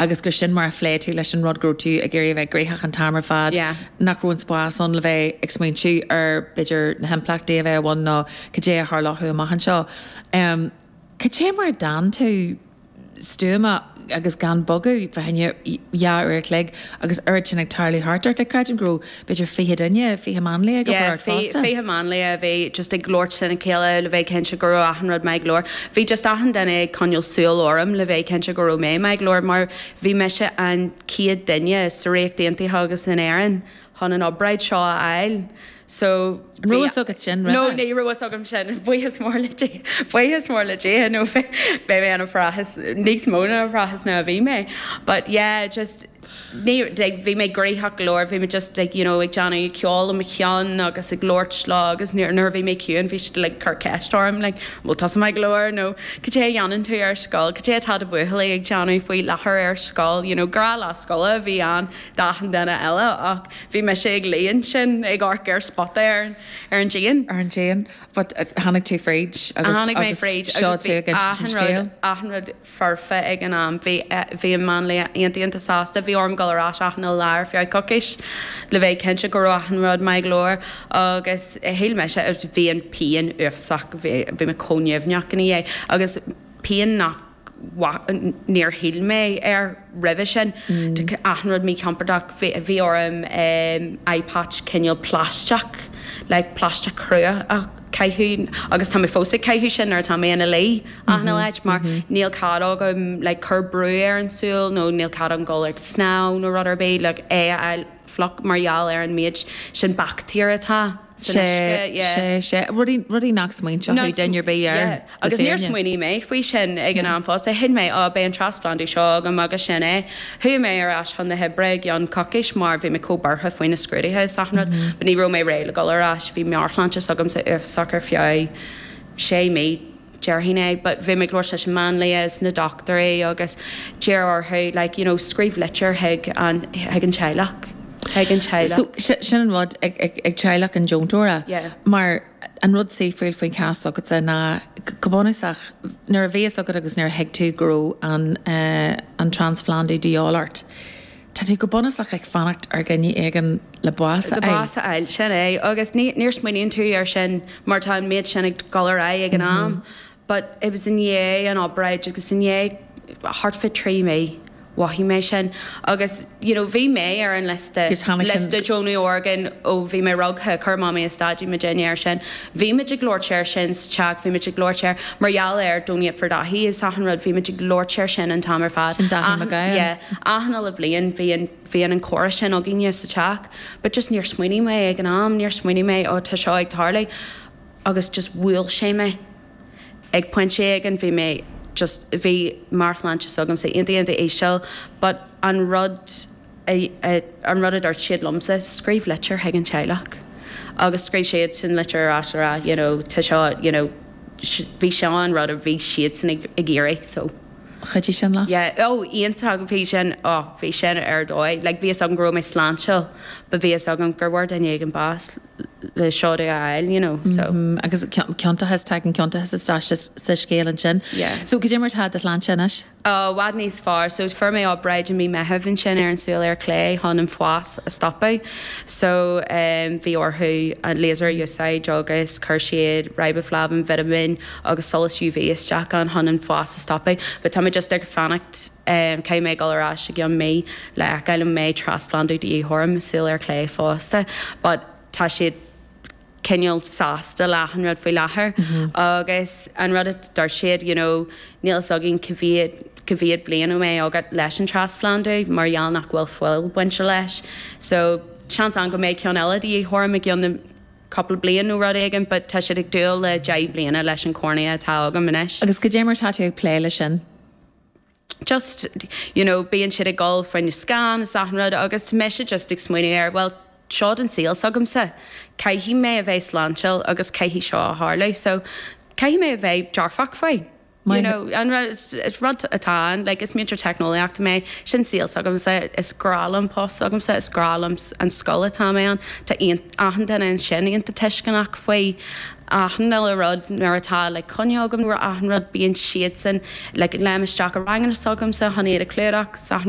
agus gur sin mar a phléigh tú leis an rud go raibh tú ag iarraidh a bheith gnoitheach an t-am ar fad, Yeah. nach raibh an spás ann le bheith ag smaointiú ar, b'fhéidir, na himpleachtaí a bheadh i bhfad nó cad é a tharlódh amach anseo. Em, cad é mar a d'fhan tú stuama agus gan bogadh, faoi choinne dhá uair a chloig agus oiread sin ag tarlú thart ort? Like, creidim go raibh b'fhéidir fiche duine, fiche máinlia ag obair ort fosta? Fiche máinlia a bhí just ag labhairt lena chéile le bheith cinnte go raibh achan rud maith go leor. Bhí just achan duine ag coinneal súil orm le bheith cinnte go raibh mé maith go leor mar bhí mise an chéad duine sa Ríocht Aontaithe agus in Éirinn chun an obráid seo a fháil so bhí... An raibh fhios agat sin roimhe? No, ní raibh fhios agam sin, buíochas mór le Dia, buíochas mór le Dia nó bheadh mé níos mó faoi stress ná a bhí mé but yeah just, bhí mé gnoitheach go leor, bhí mé just like you know ag déanamh ceol i mo cheann agus ag labhairt leo agus nuair a bhí mé ciúin bhí siad like ag cur ceist orm like an bhfuil tusa maith go leor nó cad é a dhéanann tú ar scoil, cad é atá do bhuachaill ag déanamh faoi láthair ar scoil you know gnáthlá scoile a bhí ann d'achan duine eile ach bhí mise ag luí ansin ag amharc ar spota ar an díon. ar an díon but tháinig tú fríd agus tháinig mé fríd agus bhí achan rud, achan rud. foirfe ag an am. Bhí an máinlia iontach iontach sásta. Bhí orm dul ar ais achan lá ar feadh coicís le bheith cinnte go raibh achan rud maith go leor agus shíl mise, bhí an phian uafásach, bhí mé chomh nimhneach ina dhiaidh agus pian nach, níor shíl mé air roimhe sin. Achan rud míchompordach. Bhí orm eye patch cineál plaisteach, like plaisteach crua a. chaitheamh agus tá mé fós ag caitheamh sin nuair atá mé ina luí achan oíche like mar níl cead agam like cur brú ar an tsúil nó níl cead agam dul ag snámh nó rud ar bith like é a fháil fliuch mar gheall ar an méid sin baictéar atá san uisce yeah. Sé, sé, sé. Rudaí, rudaí nach smaointeodh duine ar bith air. Yeah. Agus níor smaoinigh mé faoi sin ag an am fosta. Thuig mé, á, beidh an transphlandú seo agam agus sin é. Chuaigh mé ar ais chun na hoibre i gceann coicís mar bhí mé chomh buartha faoi na scrúduithe is achan rud. But ní raibh mé réidh le dul ar ais. Bhí meabhairshláinte s'agamsa uafásach ar feadh sé mí, déarfainn. But bhí mé ag labhairt leis an máinlia is na dochtúirí agus d'iarr orm like, you know, scríobh litir chuig an, chuig an teaghlach, chuig an So, teaghlach. si, sin an rud ag, ag, ag teaghlach an deontóra Yeah. mar. An rud saoithiúil faoin chás s'agatsa ná, go bunúsach, nuair a bhí fhios agat agus nuair a thuig tú go raibh an trans-phlandú de dhíobháil ort, tá tú go bunúsach ag fanacht ar dhuine éigin le bás a fháil. Bás a fháil, sin é. Agus ní smaoiníonn tú air sin mar tá an méid sin ag dul ar aghaidh ag an am. But it was i ndiaidh an obráid agus i ndiaidh thart fé trí mhí mhothaigh mé sin agus you know bhí mé ar an liosta, Agus tháinig sin. liosta deonaithe orgán ó bhí mé rugtha, chuir Mamaí is Daidí muidinne air sin. Bhí muid ag labhairt air sin sa teach, bhí muid ag labhairt air mar gheall ar donate for Dáithí is achan rud, bhí muid ag labhairt air sin an t-am ar fad. Sin Dáithí Mac Achan, Gabhann. yeah, achan uile bhliain bhí an, bhí an an comhrá sin againne sa teach but just níor smaoinigh mé ag an am, níor smaoinigh mé oh tá seo ag tarlú. agus just bhuail sé mé. Ag pointe éigin bhí mé just, bhí meabhairshláinte s'agamsa iontach iontach íseal but an rud a, an rud a dúirt siad liomsa, scríobh litir chuig an teaghlach. Agus scríobh siadsan litir ar ais a rá you know tá seo you know, bhí seo an rud a bhí siadsan ag iarraidh so, chuidigh sin leat? Yeah, oh iontach, bhí sin, oh bhí sin ar dóigh, like bhí fhios agam go raibh mé sláintiúil but bhí fhios agam gur bhfuair duine éigin bás. le seod a fháil, you know, so. Mm, agus ciontachas, tagann ciontachas isteach sa scéal ansin. Yeah. So, goidé mar tá do shláinte anois? Ó, i bhfad níos fearr. So, fuair mé obráid i mí Meitheamh ansin ar an tsúil ar chlé chun an fás a stopadh. So, um, bhí orthu an laser a úsáid agus chuir siad riboflavin, vitamin agus solas UV isteach ann chun an fás a stopadh. But tá mé just ag fanacht. Caithfidh mé dul ar ais i gcionn mí le fheiceáil an mbeidh trasphlandú de dhíth orm i súil ar chlé fosta but tá siad cineál sásta le achan rud faoi láthair agus an rud a dúirt siad you know níl fhios againn cá mhéad cá mhéad bliain a mbeidh agat leis an trasphlandú mar gheall nach bhfuil fuil bainte leis so seans ann go mbeidh ceann eile de dhíth orm i gcionn cúpla bliain nó rud éigin but tá siad ag dúil le deich bliana leis an chornea atá agam anois. Agus goidé mar tá tú ag plé le sin? just, you know, bíonn siad ag dul fá choinne scan is achan rud agus tá mise just ag smaoineamh ar, bhuel, seod an saol s'agamsa, caithfidh mé a bheith sláintiúil agus caithfidh seo a tharlú so caithfidh mé a bheith dearfach faoi, you know, an rud, is rud atá ann, like, is múinteoir teicneolaíochta mé, sin saol s'agamsa, is grá liom post s'agamsa, is grá liom an scoil atá mé ann, tá achan duine ansin iontach tuisceanach faoi. achan uile rud. Nuair atá like coinne agam roimh achan rud bíonn siadsan like léim isteach i ranganna s'agamsa chun iad a chlúdach 's achan rud.